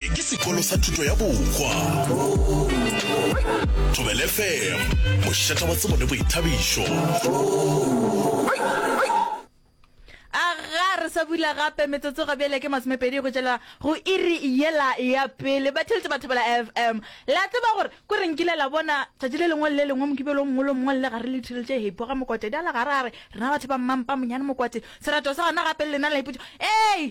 Ke sekolo sa thuto ya bokwa. Thobele FM, mošata wa tsebo le boithabišo. a ga re sa bula gape metsotso ga bjale ke masomepedi go tšela go iri yela ya pele ba theletše batho bela fm la tseba gore ko re nkile la bona tšatši le lengwe le le lengwe mokibelo mongwe le mongwe le ga re le theletše hepo ga mokwate di a le gare a re rena batho ba mmampa monyane mokwate serato sa gona gape le lena la ipotsa ee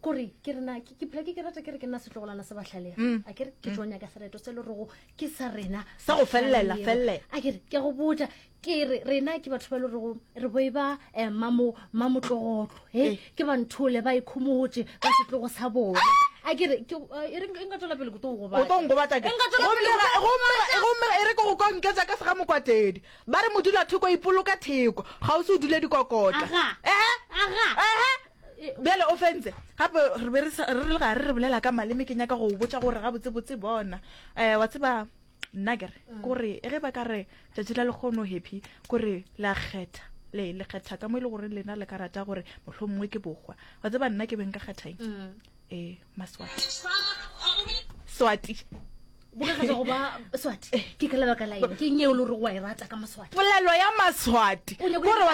kore ke rena ke phela ke ke rata ke re ke nna setlogolana se batlhalege mm. a kere ke mm. tlo nyaka sereto se le rogo ke sa rena sa go felelela felele a kere ke go botsa ke re rena ke batho ba le rogo re boi ba eh, mamotlogotlo e eh. ke banthole ba ikhomotse ka setlogo sa bona a kere e re nka tswela pele koto go gobatsaeomere e re ko go kwa nketsa ka sega mokwatedi ba re modula thoko ipoloka theko ga o se o dule dikokota ehe ehe Bjale o fentse gape re be re le gare re bolela ka maleme ke nyaka go botša gore gabotsebotse bona um wa tseba nna kere mm. kore ge ba ka re tšatši la lekgono happy kore le a kgetha le le kgetha ka mo e le gore lena le ka rata gore mohlho mongwe ke bokgwa wa tseba nna ke beng ka kgethaeng mm. ee maswati swati bokagatsa go ba swati eh. ke ka lebaka la eng ke eng eo le gore wa e rata ka maswati polelo ya maswati kore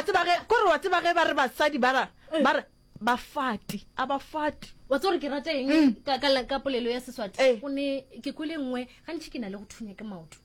wa tseba ge ba re basadi bara eh. bara bafati a bafati wa tsore ke rata eng mm. ka polelo ya seswati eh. o ne ke kwele nngwe gantšhi ke na le go thunya ke maoto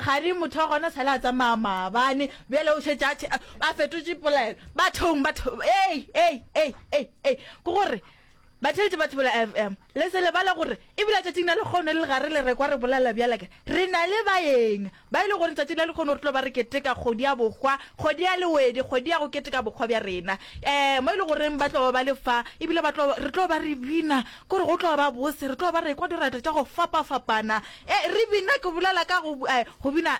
Gare motho wa gona sale a tsamaya maabane, bjale o šetše a tšhe, a fetotše polelo. Bathong, batho, ei, ei, ei, ei, ei, ke gore, batheetši ba Thibela FM, le se lebale gore, e bile tšatšing la lekgono le gare le rekwa re bolela bjale ke, re na le baeng, ba e le gore tšatšing la lekgono re tlo ba re keteka kgodi ya bohwa, kgodi ya lewedi, kgodi ya go keteka bohwa bja rena, ee, mo e le goreng ba tlo ba le fa, e bile ba tlo, re tlo ba re bina, ke gore go tlo ba bose, re tlo ba re ekwa dirata tša go fapafapana, E, re bina, ke bolela ka go, eh, go bina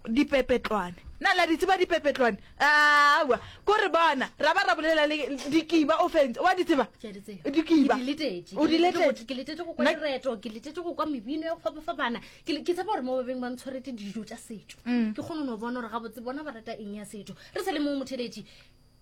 dipepetlwane. Na la di tseba dipepetlwane? Aowa, ko re bona, ra ba ra bolela le dikiba o fentse. Wa di tseba? Ke a di tseba. Dikiba. Ke di letetše. O di Ke letetše? go- ke letetše go kwa Na- direto ke letetše go kwa mebino ya go fapafapana ke le- ke tshepa gore mo ba beng ba ntshwaretse dijo tša setšo Mm. ke kgone no bona gore gabotse bona ba rata eng ya setšo re sa le moo motheletši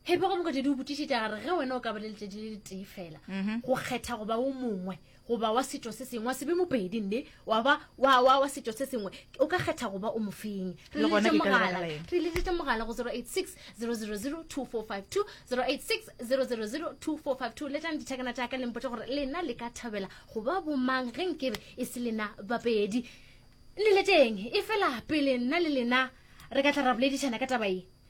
phephe go mokgwetedi o botišetša gare ge wena o ka ba le letšatši le letee fela mhm. go kgetha goba o mongwe goba wa setšo se sengwe wa sebe mopedi nne wa ba wa setšo se sengwe o ka kgetha goba o mofeng re leletse mogala go 086 000 2452 086 000 2452 letlang dithekana tša ka lempotse gore lena le ka thabela goba bomang ge nkebe e se lena bapedi le leteng e fela pele nna le lena re ka tla ra boledišana ka taba e